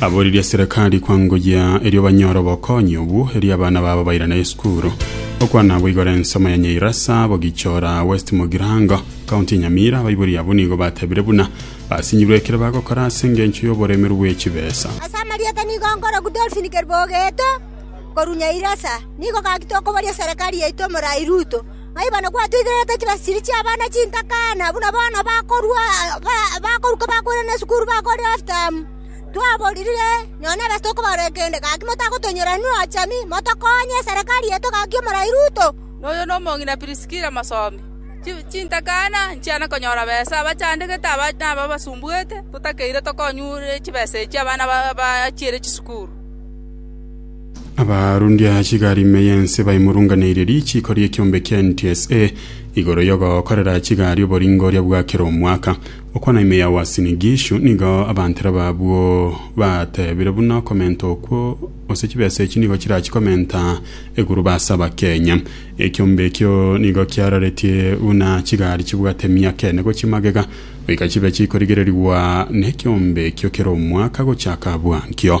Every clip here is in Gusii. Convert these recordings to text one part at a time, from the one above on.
Abo riria serekari kwangoyia erio banyore obokonyi obwo, erio abana babo bairane esukuru. Okwana abwo igoro ensemo ya Nyairasa, Bogichora, West Mugirango, County ya Nyamira, abaibori abwo nigo batebire buna basinyirwe ekero bagokora ase engencho y'oboremeru bw'echibesa. Ase amarieta nigo nkoroku Dolphin Keribogeto korwa Nyairasa, nigo gaki tokoboria serekari yaito omorai Ruto, ng'ai bono gwatoigererete chibasiri chi'abana chintaka, na buna bono bakorua, bakoruka bakoirana esukuru, bakore half term. Twaboririre nonya nebesa tokobaroria kende, gaki motagotonyora inwe ochami, motokonye eserekari yaito gaki omorai Ruto. Noyo nomong'ina Priskila mosomi. Chintakana nchiana konyora besa, abachandegete aba nabo abasumbuete, totakeire tokonyure chibesa echi abana bachiire chisukuru. Abarundi a chigari ime y'ense baimurunganeirie richiiko ri'ekiombe kia NTSA igoro y'ogokorera chigari oboringoria bwa kera omwaka. Okwana ime yao ase Nigishu, nigo abantere b'abwo bateebire buna okomenta okwo gose chibesa echio nigo chirachi komenta eguruba ase Abakenya. Ekiombe ekio nigo kiararetie buna chigari chibwate emiaka ene gochia magega goika chibe chikorigererigwa nekiombe ekio kera omwaka gochaka bwankio.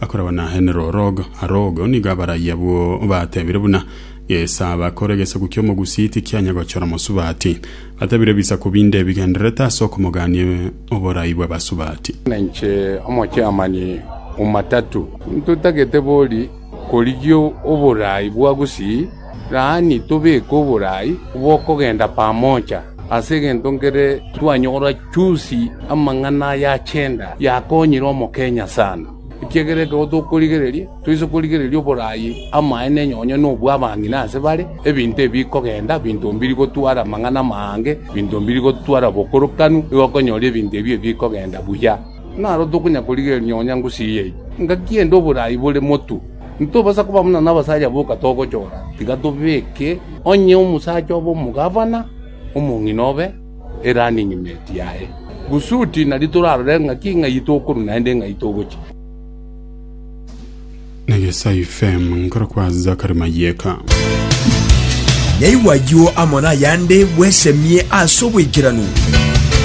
Akoragwa na enerorogo, arogo, nigo abarai abwo batebire buna gesaba kore gesaku ki'omogusii tikianya gochora mosubati. Batebire ebisaku binde ebigendererete ase okomogania oborai bw'abasubati. Ninche omochaamani o matatu. Ntotagete bori korigia oborai bwa gusii. Yaani tobeke oborai bw'okogenda pamoja, ase egento nkere twanyora chionsi amang'ana aya achenda yakonyire Omokenya sana, ekiagera ekero tokorigereria toise korigereria oborai amaene nonya nobwo abang'ina ase bare, ebinto ebi bikogenda binto mbiri gotwara amang'ana amange, binto mbiri gotwara obokorokanu, igo okonyora ebinto ebi bikogenda buya. Naro tokonyakorigereria nonya ngusii eyio, ngaki ende oborai bore motu. Intobasa koba buna nabasaria boka togochora, tiga tobeke onye omosacha obe omogavana, omong'ina obe erunning mate yaye, gusudi nario torarore ng'aki ng'ai tokorwa naende ng'ai togochia. Negesai FM nkoro kwa Zachary Mayeka. Naigwa ayio amo nayande bwesemie ase oboikeranu.